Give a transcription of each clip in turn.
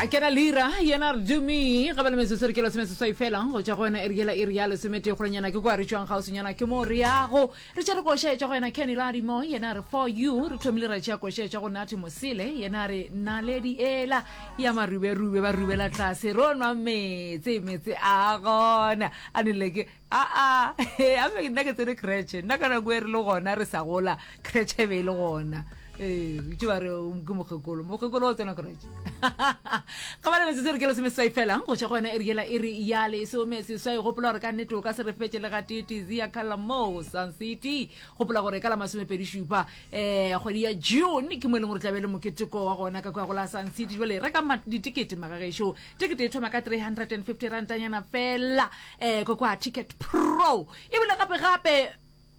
a kena lira yena re dumi ga ba le metsotso re ke lesome seswai fela go tšwa go wena eri yela eri ya lesometee golenyana ke kwa re tšwang gausinyana ke moo re yago re tšere koša etšwa go yena kenny ladimo yena re for you re thomile ra tšea koša etšwa go nati mosele yena re naledi ela ya maruberube ba rubela tlase ro nwa metse metse a gona a nele ke Aa, he, a be nna ke tsere kretšhe. Nna ka nako e re le gona re sa gola, kretšhe e be e le gona. Ee, itse ba re um, ke mokgekolo. Mokgekolo o tsena kretšhe. Ga ba le metsotso re ke lesome seswai fela, go tšwa go yona e re yela e re ya lesome seswai. Gopola gore ka nnete o ka se re fetše le ga tete zia khala moo Sun City. Gopola gore ka la masomepedi šupa um kgwedi ya June ke mo e leng gore tla be le moketeko wa gona ka kwa go la Sun City. Jwale reka ma- ditekete magagešo. Tekete e thoma ka 350 rantanyana fela. eh ko kwa ticket pro e bile gape gape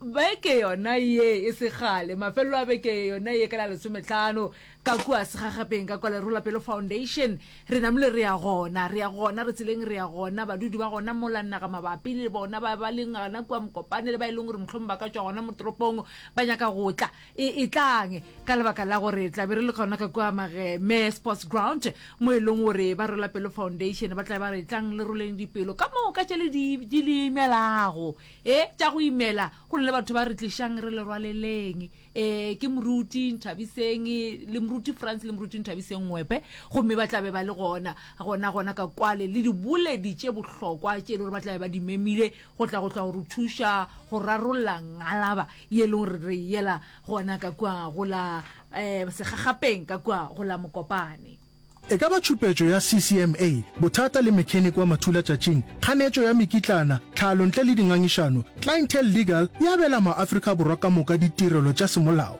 beke yona ye e segale mafelelo a beke yona ye ka la lesometlhano ka kua segagapeng ka kwa lerolapelo foundation re namile re ya gona re ya gona re tseleng re ya gona badudi ba gona molannaga mabapi le bona ba ba leng gana kua mokopane le ba e leng gore motlhong ba ka tswa gona motoropong ba nyaka go tla E etlang ka lebaka la gore tlabe re le gona ka kua mage me sports ground mo e leng gore ba rola pelo foundation ba tlabe ba re tlang le roleng dipelo ka moo ka tšele di di le imelago e tša go imela go le batho ba re tlišang re le rwaleleng e ke moruti nthabiseng le moruti france le moruti nthabiseng wepe gomme ba tlabe ba le gona gona gona ka kwale le diboledi tše bohlokwa tše e le gore ba tlabe ba di memile go tla go tla go re thuša go rarolla ngalaba ye e leng gore re yela gona ka kua go la um segagapeng ka kua go la mokopane E ka ba tšhupetšo ya CCMA, bothata le mechanic wa mathulatšatšing, kganetšo ya mekitlana, tlhalo ntle le dingangišano, Clientele Legal e abela maAfrika Borwa ka moka ditirelo tša semolao.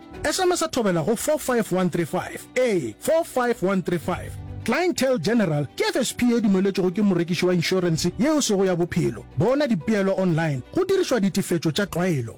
Sms a thobela go 45135, ee, 45135. Clientele General ke FSP ye dumeletšwego ke morekiši wa inšorense yeo sego ya bophelo. Bona dipeelo online go dirišwa ditefetšo tša tlwaelo.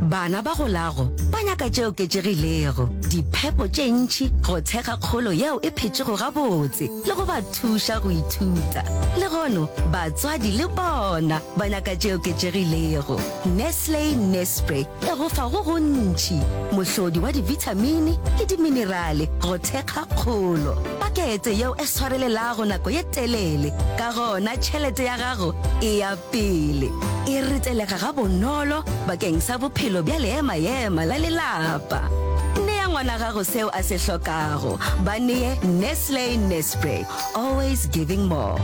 Bana ba golago ba nyaka tše oketšegilego, diphepo tše ntši, go thekga kgolo yeo e phetšego gabotse le go ba thuša go ithuta. Le gono batswadi le bona ba nyaka tše oketšegilego. Nestle Nespre. e go fa go gontši, mohlodi wa dibithamini le diminerale go thekga kgolo. Pakete yeo e swarelelago nako ye telele, ka gona tšhelete ya gago e ya pele. E ritelega gabonolo bakeng sa bophelo bja leema-ema la lelapa. Nea ngwana gago seo a se hlokago. Ba nee Nestle Nespre, always giving more.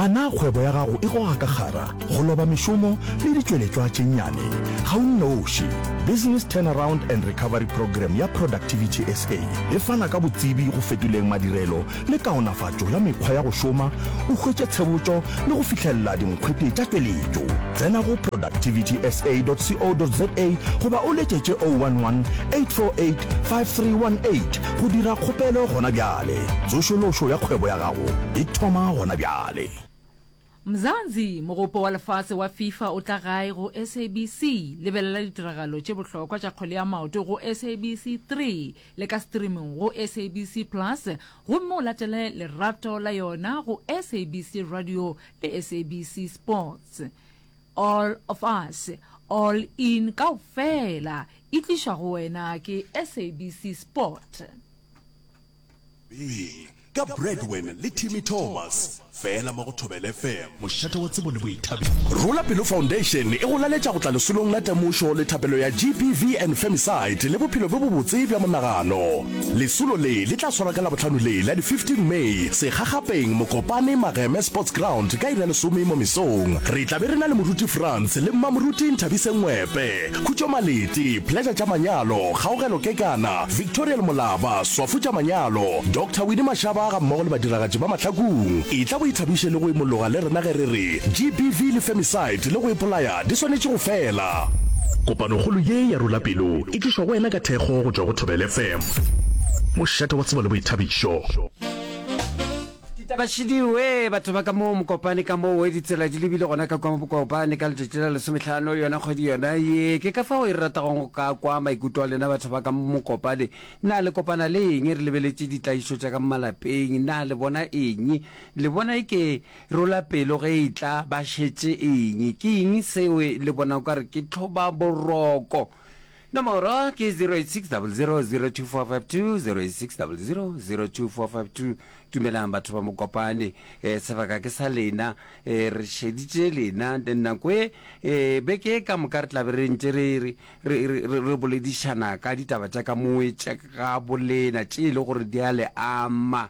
A na kgwebo ya gago e goga ka kgara, go loba mešomo le ditšweletšwa tše nnyane? Ga o nnoši. Business Turnaround and Recovery Programme ya Productivity SA e fana ka botsebi go fetoleng madirelo le kaonafatšo ya mekgwa ya go šoma, o hwetše tshebotšo le go fihlelela dinkgwete tša tšweletšo. Tsena go productivitysa.co.za goba o letšetše 011 848 5318 Go dira kgopelo gona bjale. Tsošološo ya kgwebo ya gago e thoma gona bjale. Mzansi, Mogopo wa Lefase wa Fifa o tla gae go SABC. Lebelela ditiragalo tše bohlokwa tša kgwele ya maoto go SABC Three le ka streaming go SABC Plus gomme o latele lerato la yona go SABC Radio le SABC Sports. All of us, All In kaofela e tlišwa go wena ke SABC Sport. Ee, ka Bradwin le Timmy Thomas, fela mo go Thobela FM. Mošate wa tsebo le boithabišo. Rula Pelo Foundation e go laletša go tla lesolong la temošo le thapelo ya GBV and Femicide le bophelo bjo bobotse bja monagano. Lesolo le le tla swarwa ka Labohlano le la di 15 May segagapeng Mokopane Mageme Sports Ground ka iri ya lesome mo mesong. Re tla be re na le moruti Frans le mmamoruti Nthabise Ngwepe, Khutšo Maleti, Pleasure tša manyalo, Kgaogelo Kekana, Victorial Molaba, Swafo tša manyalo, Doctor Winnie Mashaba ga mmogo le badiragatši ba Mahlakung. Etla o ithabiše le go imologa le rena ge re re GBV le femicide le go ipolaya di swanetše go fela. Kopanokgolo ye ya Rula Pelo E tlišwa go wena ka thekgo go tšwa go Thobela FM, mošate wa tsebo le boithabišo. Ditaba šidi wee batho ba ka mo Mokopane ka mo wee ditsela di lebile gona ka kwa Mokopane ka letšatši la lesomehlano yona kgwedi yona ye ke ka fago e re ratagong go ka kwa maikuto a lena batho ba ka mo Mokopane na le kopana le eng re lebeletše ditlaišo tša ka malapeng na le bona eng le bona e ke rola pelo ge e tla ba šetše eng ke eng seo le bona o ka re ke tlhoba boroko Nomoro ke 08600002452086000245 Dumelang batho ba Mokopane eh, sebaka ke sa lena eh, re šeditše lena then nako e eh, beke e ka moka re tlabe re ntše re, re, re, re, re, re boledišana ka ditaba tša ka moe tša ga bolena tše e le gore di a le ama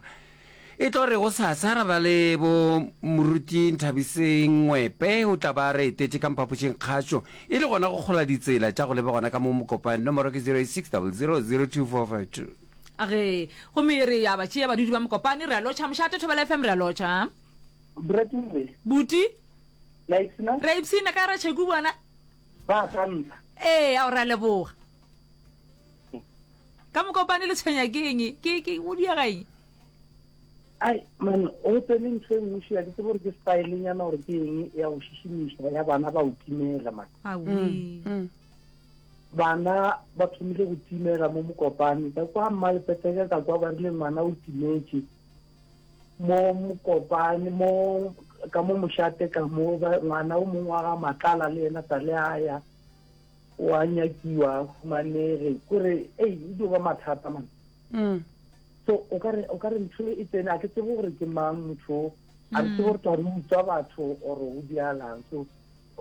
E tlo re gosasa ra ba le bo Moruti Nthabiseng Ngwepe o tla ba re etetše ka mphapošeng kgašo e le gona go kgola ditsela tša go leba gona ka mo Mokopane, nomoro ke 0860002452. Ge gomme re ya ba tšea badudi ba Mokopane re a lotšha mošate Thobela FM re a lotšha. Brettle. Buti. Le a ipshina? Re a ipshina ka ra Cheku bona. Ba a tantsha. Ee ao re a leboga. Ka mokopane le tshwenya ke eng? Ke ke o diega eng? Ai man o tsene ntho e nngwe shila ke tsebo gore ke style nyana gore ke eng ya go šešimiša ya bana ba o timela man. Mm, mm. Bana ba thomile go timela mo mokopane ka kwa mma lepeteke ka kwa ba rile ngwana o timetse mo mokopane mo ka mo mošate ka mo ngwana o mongwe wa ga matlala le ena sa le aya o a nyakiwa a fumanege kore ei e dio ba mathata man mm. so o ka re o ka re ntho e tsene a ke tsebo gore ke mang motho a re tsebo gore tla re utswa batho or o dialang so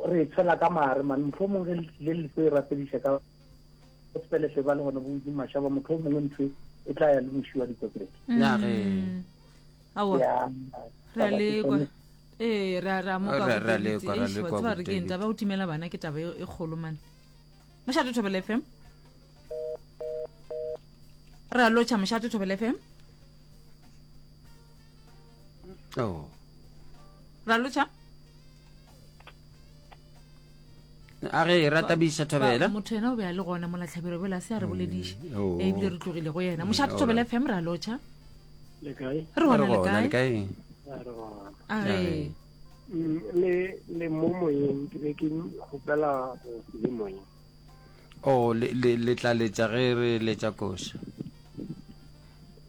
re tshela ka mare man motlho mongwe le le tlo e rapediša ka sepeletle ba le gone bo di mashaba motlho mongwe ntho e, e tla ya le mošiwa dikotlete ya ge mm. ya re a lekwa ee ra ra mo Ra- ka ra le kwa- ra le kwa tsaba re ke eng, Botebetsi. taba ya go timela bana ke taba e e kgolo mane mošate thobela fm ra lotšha mošate thobela fm oh. ra lotšha a re e rata bisa thobela motho yena o be a le gona mola tlhabiro bela se a re bolediše mm, oh. e bile re tlogile go yena mošate thobela fm ra lotšha re gona lekae a re mm, le le mo moyeng ke be ke gopela go le moyeng o oh, le tla letša ge re letša koša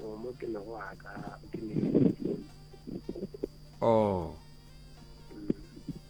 oh, mo ke lego aka ke le o oh.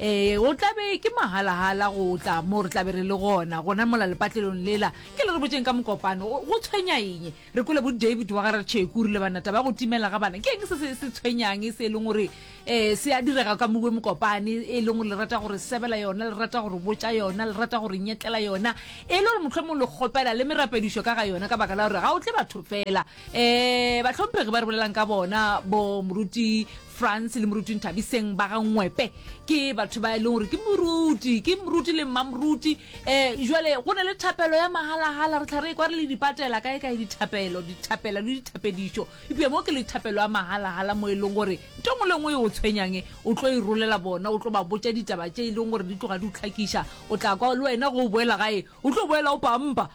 Ee, go tla be ke mahala-hala go tla mo re tla be re le gona gona mola lepatlelong lela ke le re botseng ka mokopano go go tshwenya eng re kwele bo david wa ga re tšheku rile bana taba ya go timela ga bana ke eng se se se tshwenyang se e leng gore um se a direga ka mowe mokopane e leng gore le rata gore sebela yona le rata gore botša yona le rata gore nyetlela yona e le gore motlho mongwe le kgopela le merapedišo ka ga yona ka baka la gore ga o tle batho fela um batlhomphegi ba re bolelang ka bona bo moruti france le moruti nthabiseng ba ga ngwepe ke batho ba e leng gore ke moruti ke moruti le mmamoruti um eh, jale go ne le thapelo ya magalagala re tlha re kwa re le dipatela kae kae dithapelo dithapela le dithapedišo epea mo ke le thapelo ya magalagala mo e leng gore nto ngwe le ngwe e o tshwenyange o tlo e rolela bona o tlo ba botsa ditaba tse e leng gore di tloga di o tlhakiša o tla kwa le wena go o boela gae o tlo boela o pampa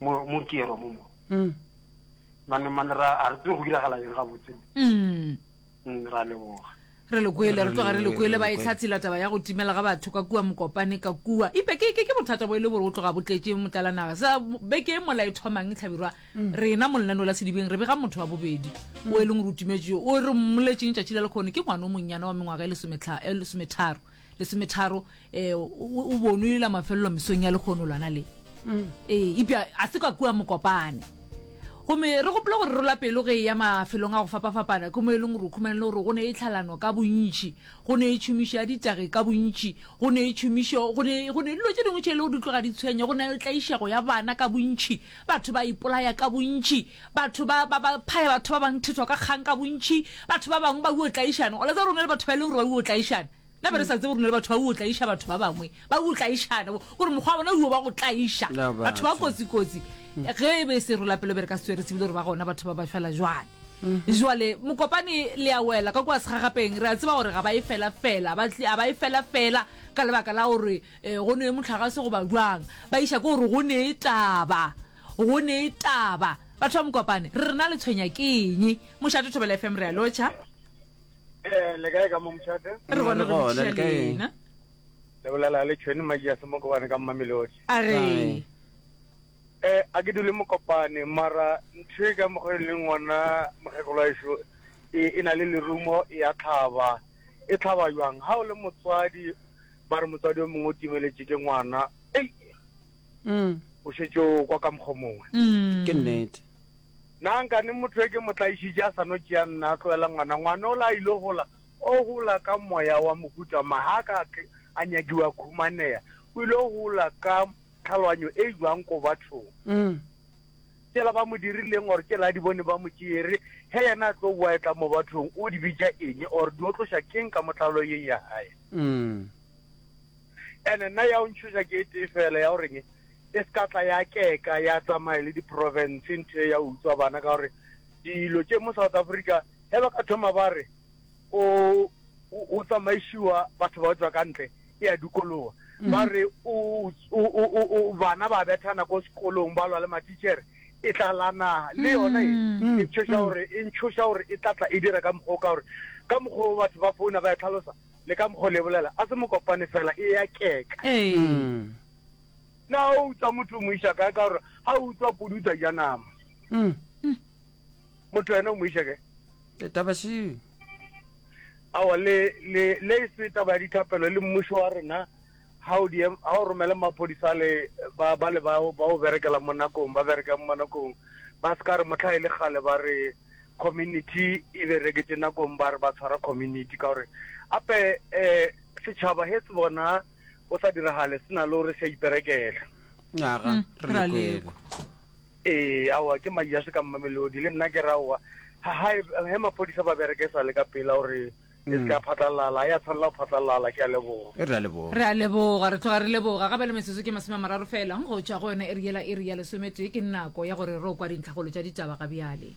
mo mo ke ro mo mo mm. mane mane ra a re go dira gala eng ga botse mm. mm ra le boga re le kwele re tloga re le kwele ba e tlhatsela taba ya go timela ga batho ka kua mokopane ka kua ipe ke ke ke bothata bo e le bore o tloga bo tletse motlala naga sa be ke mola e thomang tlhabirwa mm. rena mo lenano la sedibeng re be ga motho wa bobedi mm. o e leng re o timetse o re mmoletseng tšatši la le kgone ke ngwana o monnyana wa mengwaga e lesometharo lesometharo um o bonulela mafelelo mesong ya lekgono lwana le mm. ee epja a se ka kua mokopane gomme re gopole gore rola pelo ge e ya mafelong a go fapafapana ke mo e leng gore o khumane le gore go ne e tlhalano ka bontši go ne e tšhomišo ya ditage ka bontši go ne e tšhomišo go ne dilo tše dingwe tše e le go di tloga di tshwenya go ne e tlaišego ya bana ka bontši batho ba ipolaya ka bontši Batho ba ba ba phaya batho ba bang thetwa ka kgang ka bontši. Batho ba bangwe ba uo tlaišana. Go la tseba rona le batho ba e leng gore ba uo tlaišana. Na ba re sa tsebe rona le batho ba uo tlaiša batho ba bangwe. Ba uo tlaišana. Gore mokgwa wa bona uo ba go tlaiša. Na batho. Batho ba kotsi-kotsi. Ge e be serolapelo be re ka se tswere se bile gore ba gona batho ba ba fela jwale. Jwale mokopane le a wela ka kua segagapeng. Re a tseba gore ga ba e fela-fela. Ba tli a ba e fela-fela ka lebaka la gore go nwe mohlagase goba jwang. Ba iša ko gore go ne taba. go ne e taba batho ba mokopane re rena le tshwenya ke eng mošate thobela fm re a lotšha Eh, le kae ka mo mošate re gone re Gona, le kae? motšhalena le bolela le tšhweni maji a se mo kobane ka mmamelodi a re Aye. um a ke dule mokopane mara ntho e ka mokgwa e leng ngwana mokgekolo wa ešo e e na le lerumo e ya tlhaba e tlhaba jwang ga o le motswadi ba re motswadi o mongwe o timeletše ke ngwana ei o šetše o kwa ka mokgwa mongwe. Ke nnete. Na nkane motho yo ke mo tlaišitše a sa no tšea nna, a tloela ngwana? Ngwana ola a ile gola, o gola ka moya wa mohuta mang? Ga a ka a nyakiwa, a khumaneya. O ile go gola ka tlhaloganyo e jwang ko bathong? Tšela ba mo dirileng or tšela a di bone ba mo tšere, ge yena a tlo boa e tla mo bathong, o di bitša eng or di otloša keng ka mo tlhaloyeng ya gae? Ene nna ya o ntšhoša ke e tee fela ya goreng e se ka tla ya keka ya tsamaye le diprovince nthe ya utswa bana ka gore dilo tše mo south africa ge ba ka thoma ba re o o tsamaišiwa batho ba tswa ka ntle e ya dikolowa mhm. ba re bana ba bethana ko sekolong ba lwa le matichere e tlala naga le yona e mhm. tshoša gore e ntshoša gore e tlatla e dira ka mokgwa o ka gore ka mokgwa o batho ba founa ba e tlhalosa Le ka mokgo le bolela, a se mo kopane fela, e ya keka. Ee. Na o utswa motho o mo iša kae? Ka gore ga o utswa podi o tla ja nama. Motho wena o mo iša kae? Taba se. Awa le le le se taba ya dithapelo le mmušo wa rena ha o di ha o romela maphodisa le ba ba le ba ba o berekela mo nakong ba bereka mo nakong ba ska re motlha e le gale ba re community e bereketše nakong ba re ba tshwara community ka gore ape um setšhaba he se bona o sa diragale se na le gore se a iperekela aga hmm, re le kwele ee aowa ke madi a se ka mmamelodi le nna ke raowa he maphodisa ba bereke sa le ka pela gore E se ka phatlalala, ya tshwanela go phatlalala, ke a leboga. E re a leboga. Re a leboga, re tloga re leboga. Ga ba le metsotso ke masome a mararo fela go tšwa go yona iri yela iri ya lesometee. Ke nako ya gore ro kwa dintlhagolo tša ditaba ga bjale.